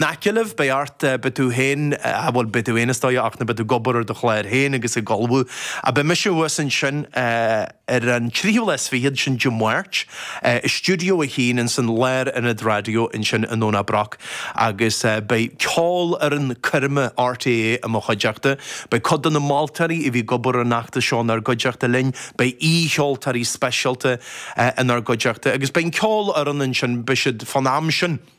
n-aice libh, beidh och, beidh tú féin, ah bhuel, beidh tú féin is dóigh ach na beidh tú ag obair ar do chlár féin agus ag ullmhú. Ah beidh mise thuas ansin ar an tríú lá is fichead, sin Dé Máirt, i Stiúideo a hAon insan Lárionad Raidió ansin i nDomhnach Broc agus beidh ceolfhoireann coirme RTÉ i mo chuideachta, beidh cuid de na moltóirí a bhí ag obair ar an fheachtas seo inár gcuideachta linn, beidh aoi-cheoltóirí speisialta inár gcuideachta agus beidh an ceolfhoireann ansin, beidh siad fán am sin.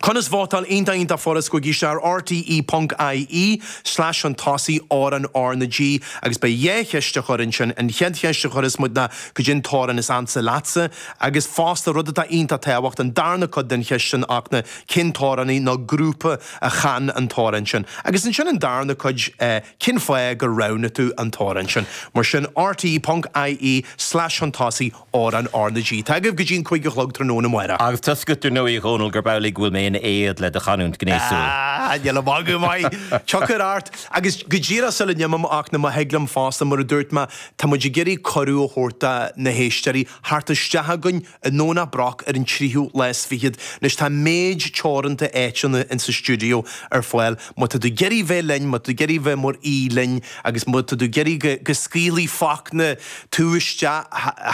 Conas vótáil? Iontach, iontach furast. Gabhaigí isteach ar rte ponc ie slais chun tosaigh amhrán RnaG agus beidh dhá cheist á chur ansin, an chéad cheist a chuirfeas muid ná cad é an t-amhrán is ansa leatsa agus fosta, rud atá iontach tábhachtach, an darna cuid den cheist sin ach na cén t-amhránaí nó grúpa a chan an t-amhrán sin agus ansin an darna cuid eh cén fáth gur roghnaigh tú an t-amhrán sin? Mar sin, rte ponc ie slais chun tosaigh. Amhrán RnaG. Tá agaibh go dtí an cúig a chlog tráthnóna amárach. Agus tá a fhios agat, dar ndóigh, a Dhónaill, gurb amhlaidh go bhfuil mé in éad le do chanúint gnéasúil. Ah, níl a magadh maith! Tiochfair art, agus go díreach sula n-imim ach na má thig liom fosta, mar a dúirt mé, tá muid ag iarraidh cuireadh a thabhairt do na héisteoirí theacht isteach chugainn i nDomhnach Broc ar an tríú lá is fichead. Anois, tá méid teoranta áiteanna insa stiúideo ar fáil. Má tá tú ag iarraidh bheith linn, má tá tú ag iarraidh bheith mar aoi linn agus má tá tú ag iarraidh go scaoilfidh Fachtna tú isteach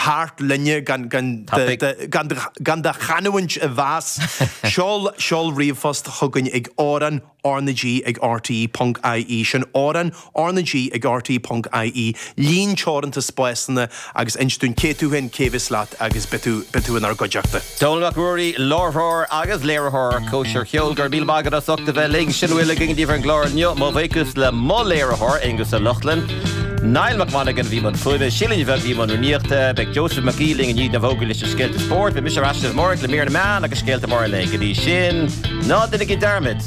thart linne gan do chanúint a mheas, seol, seol ríomhphost chugainn ag amhranrnag@rte.ie, sin amhrán RnaG ag RTÉ.ie, líon teoranta spásanna agus inis dúinn cé tú féin, cé a bheas leat agus beidh tú inár gcuideachta. Dónall Mac Ruairí, láithreoir agus léiritheoir Cóisir Cheoil, go raibh míle maith agat as ucht a bheith linn. Sin a bhfuil againn daoibh ar an gclár inniu. Mo bhuíochas le mo léiritheoir, Aonghus Ó Lochlainn. Niall Mac Monagain a bhí i mbun fuaime, Síle Ní Bheag a bhí i mbun rúnaíochta. Beidh Joseph Mac Aoidh linn i ndiaidh na bhfógraí leis na scéalta spóirt. Beidh mise ar ais amárach le Mír na Meán agus scéalta móra an lae. Go dtí sin, ná déanaigí dearmad.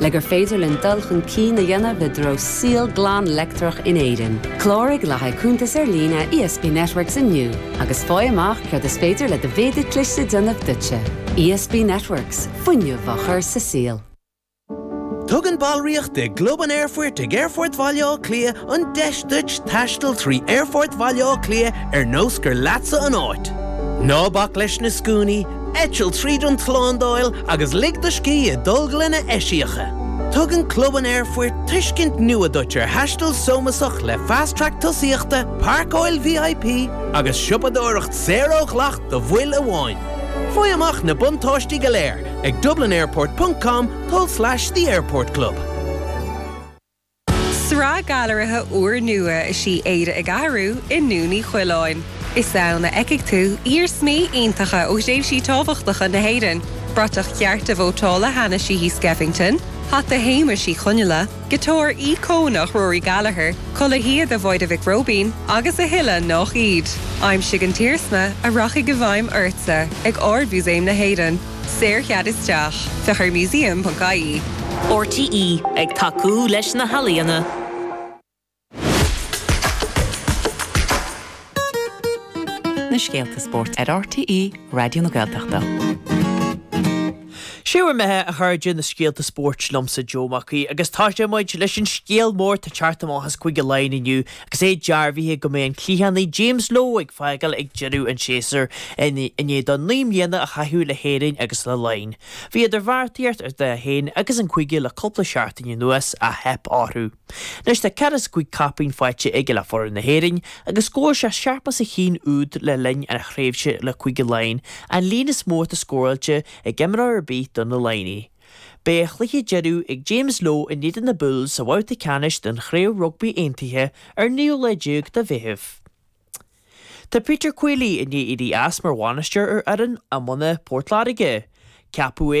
le gur féidir linn dul chun cinn a dhéanamh i dtreo saol glan leictreach in Éirinn. Cláraigh le haghaidh cuntas ar líne ESB Networks inniu agus faigh amach céard is féidir le do mhéadar cliste a dhéanamh duitse. ESB Networks, fuinneamh á chur sa saol. Tugann ballraíocht i gClub an Aerfoirt ag Aerfort Bhaile Átha Cliath an deis duit taisteal trí Aerfort Bhaile Átha Cliath ar nós gur leatsa an áit. Ná bac leis na scuainí, Eitil tríd an tslándáil agus lig do scíth i dtolglanna eisiacha. Tugann Club an Aerfoirt tuiscint nua duit ar thaisteal sómasach le Fast Track tosaíochta, páirceáil VIP agus siopadóireacht saor ó dhleacht do bhaill amháin. Faigh amach na buntáistí go léir ag dublinairport.com tulslais theairportclub. Sraith gailearaithe úrnua is í Éire ag Athrú i nDún Uí Choileáin. Is ann a fheicfidh tú iarsmaí iontacha ó thréimhsí tábhachtacha na hÉireann, bratach chearta vótála Hanna Sheehy Skeffington, hata Shéamuis Uí Chonghaile, giotár íocónach Rory Gallagher, culaith shíoda Mháire Mhic Róibín agus a thuilleadh nach iad. Aimsigh an t-iarsma a rachaidh i bhfeidhm ortsa ag Ard-Mhúsaem na hÉireann. Saorchead isteach, féach ar museum.ie. RTÉ, ag tacú leis na healaíona. na scéalta spóirt ar RTÉ Raidió na Gaeltachta. 'Sé bhur mbeatha, a chairde, na scéalta spóirt liomsa Joe Mac Aoidh agus táite muid leis an scéal mór atá ag teacht amach as Cúige Laighean inniu Agus é dearbhaithe go mbeidh an cliathánaí James Lowe ag fágáil ag deireadh an tséasúir, i ndiaidh dó naoi mbliana a chaitheamh le hÉirinn agus le Laighin, bhí idirbheartaíocht idir é féin agus an cúige le cúpla seachtain anuas ach theip orthu. Anois tá daichead is cúig caipín faighte aige le foireann na hÉireann agus scóráil sé seachtó is a haon úd le linn a thréimhse le Cúige Laighean, an líon is mó atá scóráilte ag imreoir ar bith do na Laighnigh. Beidh a chluiche deireadh ag James Lowe in éadan na Bulls sa bhabhta ceannais den Chraobh Rugbaí Aontaithe ar an 19ú lá de Mheitheamh. Tá Peter Queally i ndiaidh éirí as mar bhainisteoir ar fhoireann iomána Port Láirge. Ceapadh é